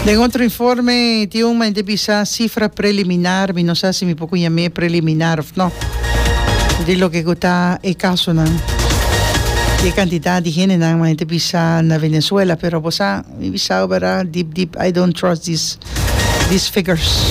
Den otro informe tin un mente bisa sifra preliminar, mi no sa si mi por cu yam'e preliminar of no, di loke cu ta e casonan y e cantidad di hendenan m'a hende bisa na Venezuela. Pero bo sa, mi bisa'bo bera, dip dip I don't trust these figures.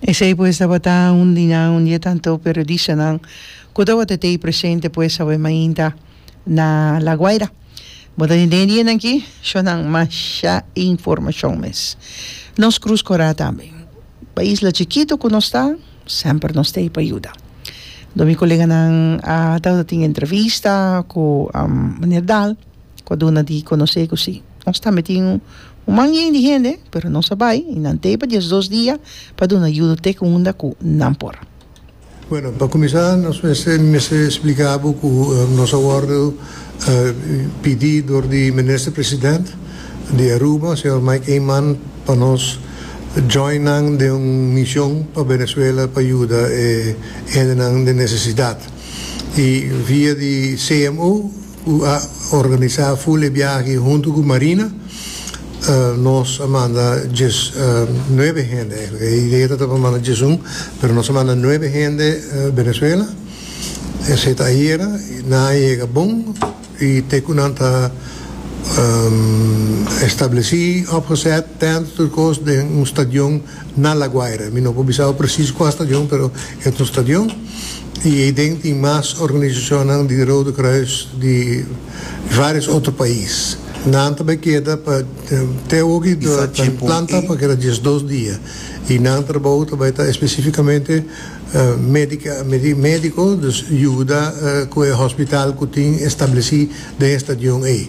Esei pues tabata un dinan un di e tanto periodistanan ku tabata tei presente pues awe mainta na La Guaira. Bo ta tende e dianan aki shonnan masha informashon mes. Nos krus korá tambe. Pa isla chikitu ku nos ta semper nos tei pa yuda. Dor mi koleganan a tabata tin entrevista ku Meneer Dahl ku a duna di konosé ku si. Nos tambe tin un manjen di hende, pero nos a bai i nan tei pa diesdos dia pa duna yuda te ku unda ku nan por. Bueno, pa kuminsá nos mester spliká bo ku nos a wòrdu pidi dor di Minister President di Aruba, señor Mike Eman, pa nos join nan den un mision pa Venezuela pa yuda e hendenan den nesesidat. I via di CMO Cu a organisa ful e biaha aki hunto cu Marina. Nos a manda dies, nuebe hende, e idea ta ta pa manda diesun, pero nos a manda nuebe hende Venezuela. Esey ta ayera, nan a yega bon y te cu nan ta estableci, opgezet, tent, tur cos den un stadion. Na La Guaira. Mi no por bisa awe presis kua stadion pero e ta un stadion y ey den tin mas organisacionnan di Rode Kruis di varios otro pais. Nan ta bay keda pa te awoki ta bay planta pa keda diesdos dia y nan trabou ta bay ta especificamente medico, dus yuda cu e hospital cu tin estableci den e stadion ey.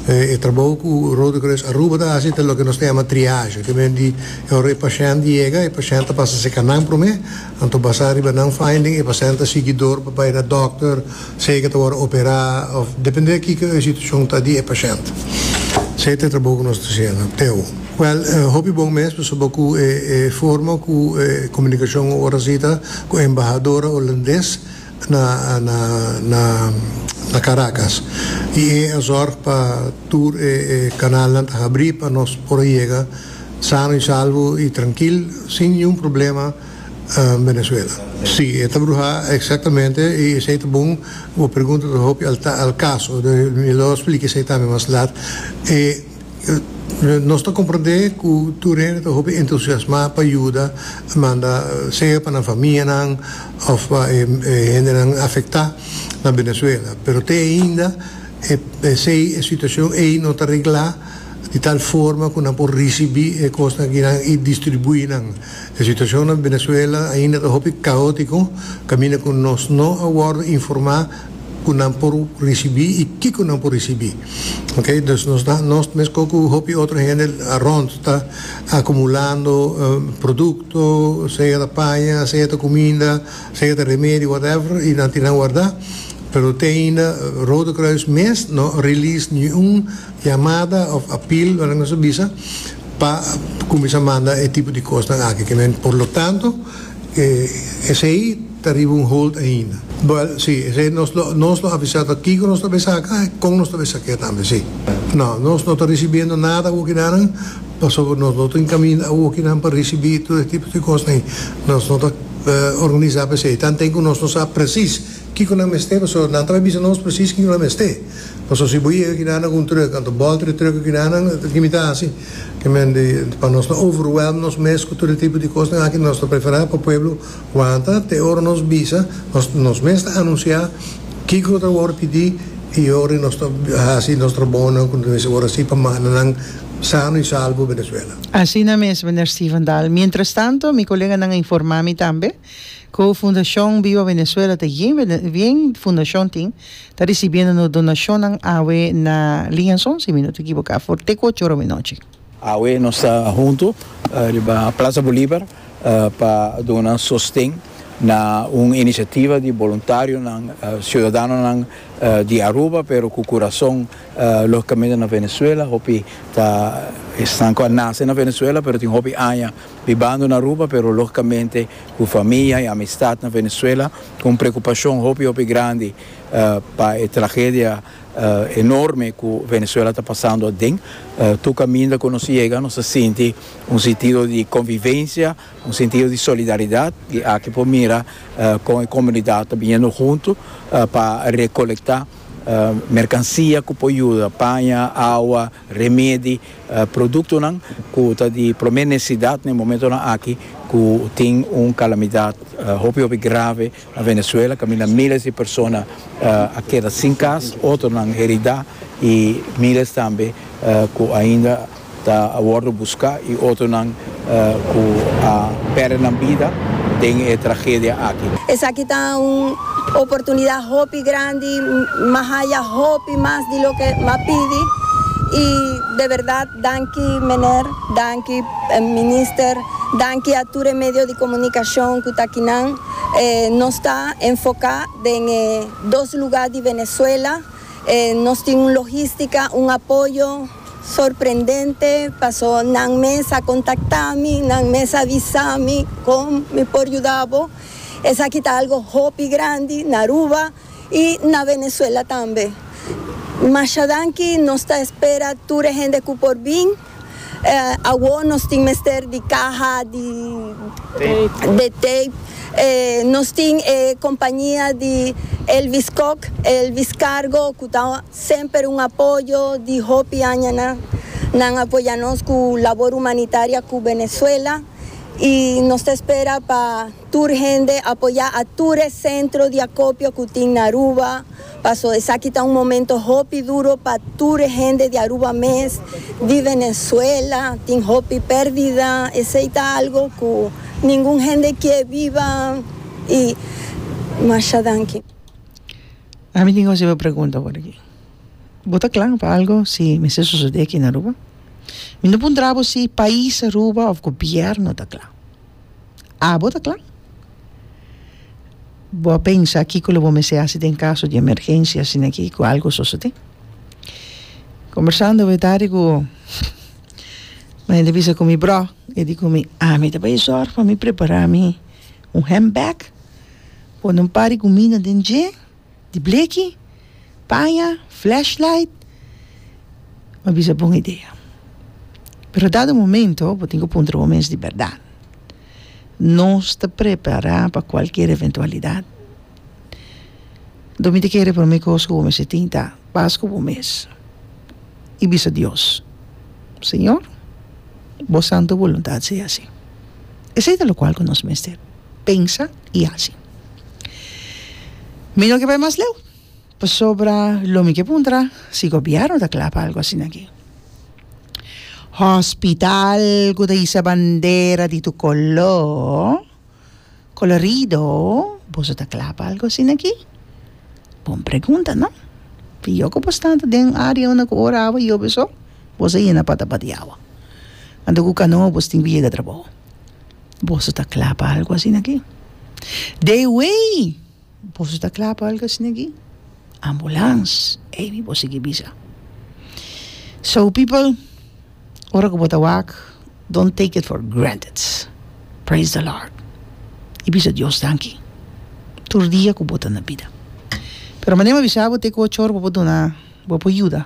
E trabou ku Rode Kruis Aruba ta hasi ta loke nos ta yama triage. Te men di e ora e pashènt yega, e pashènt ta pasa seka nan promé, anto basá riba nan finding e pashènt ta sigui dor pa bai na dòkter, sei ke ta wòrdu operá òf dependé kiko e situashon ta di e pashènt. Sei ta e trabou ku nos ta shena. Teo. Wèl, hopi bon mes pasobra ku e forma ku e komunikashon ora si ta ku embahadora Holandes na Caracas y e a zorg pa tur e canalnan ta habri pa nos por a yega sano y salvo y trankil sin ningún problema Venezuela. Si, e ta bruha exactamente y esey ta bon. Bo pregunta ta hopi al caso, mi lo explica esey tambe mas laat. Nos ta komprendé ku tur hende ta hopi entusiasmá pa yuda, manda sea pa nan famianan òf pa e hendenan afektá na Venezuela. Pero te ainda p'esei e situashon ei no ta reglá di tal forma ku nan por risibí e kosnan aki nan i distribuí nan. E situashon na Venezuela ainda ta hopi kaótiko kaminda ku nos no a wòrdu informá. ku nan por risibi i kiko nan por risibi ok dus nos ta nos mescó ku hopi otro hende arond ta akumulando produkto sea ta paña sea ta kuminda sea ta remedio whatever i nan tin nan wardá pero te ainda Rode Kruis mes no a release niun yamada òf apil wèn nos ta bisa pa kuminsá manda e tipo di kosnan aki por lo tanto esei. ta riba un hold ainda. Bwel, si, esei nos lo, nos lo avisá ta kiko nos ta bai saka e kon nos ta bai sak'é tambe, si. No, nos no ta risibiendo nada awoki nanan, pasobra nos no ta enkaminda awoki nan pa risibí tur e tipo di kos nei nos no ta organisá pa esei, tanten ku nos no sa presis kiko nan mester, pasobra nan ta bai bisa nos presis kiko nan mester. Pasobra si bo yega aki nanan ku un truk, anto bòlta di truk aki nanan, ke mi ta hasi? Ke men di, pa nos no overwhelm nos mes ku tur e tipo di kosnan aki, nos ta preferá pa pueblo, Wanta te ora nos bisa, nos nos mes ta anunciá kiko lo ta wòrdu pidi i yori nos ta hasi nos trabounan ku nos ta mester ora hasi pa mananan sano i salbo Venezuela. Asina mes, Mender Steven Dahl. Mientrastanto, mi koleganan a informá mi tambe ku Fundashon Viva Venezuela ta yen yen fundashon tin ta risibiendo nos donashonnan awe na liñason, si mi no ta ekiboká, for te ku ocho ora minochi. Awe nos ta huntu riba Plaza Bolivar pa duna sosten na un inisiativa di boluntarionan, siudadanonan di Aruba pero ku kurason logikamente na Venezuela, hopi ta esnan ku a nase na Venezuela pero tin hopi aña bibando na Aruba pero logikamente ku famia i amistat na Venezuela, un preokupashon hopi hopi grandi pa e tragedia. enorme cu Venezuela ta pasando aden. Tur caminda cu nos yega nos a sinti un sentido di convivencia, un sentido di solidaridad y aki por mira con e comunidad ta biniendo hunto pa recolecta mercancia cu por yuda, paña, awa, remedi, productonan cu ta di prome necesidad na e momentonan aki cu tin un calamidad hopi hopi grave. Na Venezuela caminda miles di persona a keda sin cas, otronan herida y miles tambe cu ainda ta a wordo busca y otronan cu a perde nan bida den e tragedia aki. Esaki ta un oportunidad hopi grandi, mahaya hopi mas di loke m'a pidi y de verdad Danki Mener, danki Minister, danki a tur e medio di comunicacion cu ta aki nan. Nos ta enfoca den e dos lugar di Venezuela. Nos tin un logistica, un apoyo sorprendente paso nan mes a contacta mi, nan mes a visa mi con mi por yuda bo. Esaki ta algo hopi grandi na Aruba. Y na Venezuela tambe. Masha danki, nos ta espera tur e hende cu por bin. Awor nos tin mester di caha di de tape. Nos tin e compañia di Elvis Kok, Elvis Cargo, cu ta semper un apoyo di hopi aña na. Nan a apoya nos cu labor humanitaria cu Venezuela y nos ta espera pa. Tur hende apoyá a tur e sentro di akopio ku tin na Aruba, paso esaki ta un momento hopi duro pa tur e hende di Aruba mes, di Venezuela, tin hopi perdida, esei ta algo ku ningun hende kie biba i masha danki. A mi tin un simpel pregunta por aki. Bo ta kla pa algo si mester sosodé aki na Aruba? Mi no puntra bo si pais Aruba of gobièrnu ta kla. Abo ta kla? Bo a pensa kiko lo bo mester hasi den kaso di emergensia asina aki ku algu a sosodé. Kombersando awe tardi ku un hende a bisa ku mi, Broh, e di ku mi, a mi ta bai sòrg pa mi prepará mi un hèmb bèg, pone un par di kumina den dje di bleki, paña, flashlight, m'a bisa bon idea. Pero dado momento bo tin ku puntra bo mes di bèrdat, nos ta prepará pa kualkier eventualidat? Lo mi ta kere promé kos ku bo mester tin ta pas ku bo mes i bisa Dios, Señor, bo santu boluntat sea asi. Esei ta lokual ku nos mester pensa i hasi. Mi no ke bai mas leu, pasobra lo mi ke puntra si gobièrnu ta kla pa algu asina aki. Hòspital ku ta hisa bandera di tur koló kolorido, boso ta kla pa algu asina aki? Bon pregunta, no? Di yo ku bo sta ta den área unda ku ora awa yobe so, boso a yena patapat di awa. Anto ku kanoa boso tin ku yega trabou. Boso ta kla pa algu asina aki? De wey! Boso ta kla pa algu asina aki? Ambulans! Ey mi por sigui bisa. So people, ora ku bo ta wak, don't take it for granted. Praise the Lord. I bisa Dios danki tur dia ku bo ta na bida. Pero manera mi a bisa bo te ku ochor bo por duna, bo por yuda.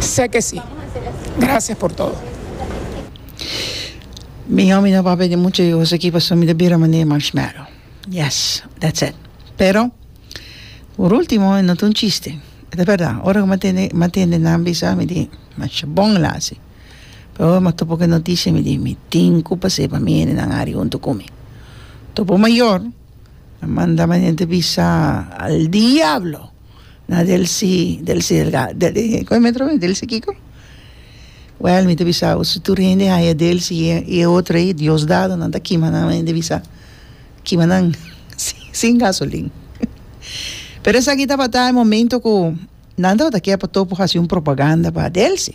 Sé ke si. Gracias por todo. Mijo mi no por a pedi mucho e goso aki pasobra mi ta bira manera marshmallow. Yes, that's it. Pero por ultimo e no ta un chiste. E ta berdad. Ora ku mi a tende mi a tende nan bisa mi di masha bon el a hasi. Pero ora mi a topa ku e noticia mi di mi tin ku pase pa mi hende nan a hari huntu ku mi. Topo mayor a manda mi hende bisa al diablo. na delsi delsi delsi kiko wèl mi ta bisa bo si tur hende haya delsi i e otro ei diosdado nan ta kima nan hende bisa kima nan sin gasolin pero esaki tabata e momento ku nan tabata ke pa topo hasi un propaganda pa delsi.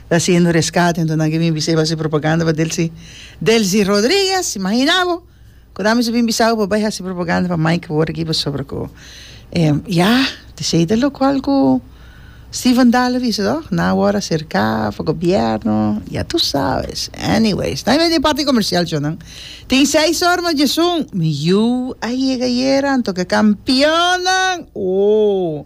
Ta haciendo rescate enton nan ke bin bisa e base propaganda pa Delcy Delcy Rodriguez imagina bo cu nan bisa bin bisabo pa bay haci propaganda pa Mike por aki pasobra cu ya di esey ta locual cu Steven Dahl a bisa toh nan awor a cerca pa gobierno ya tu sabes anyways nan a wende e parti comercial cho nan tin seis or mas djesun mi yu a yega ayer anto ke campeonnan ooh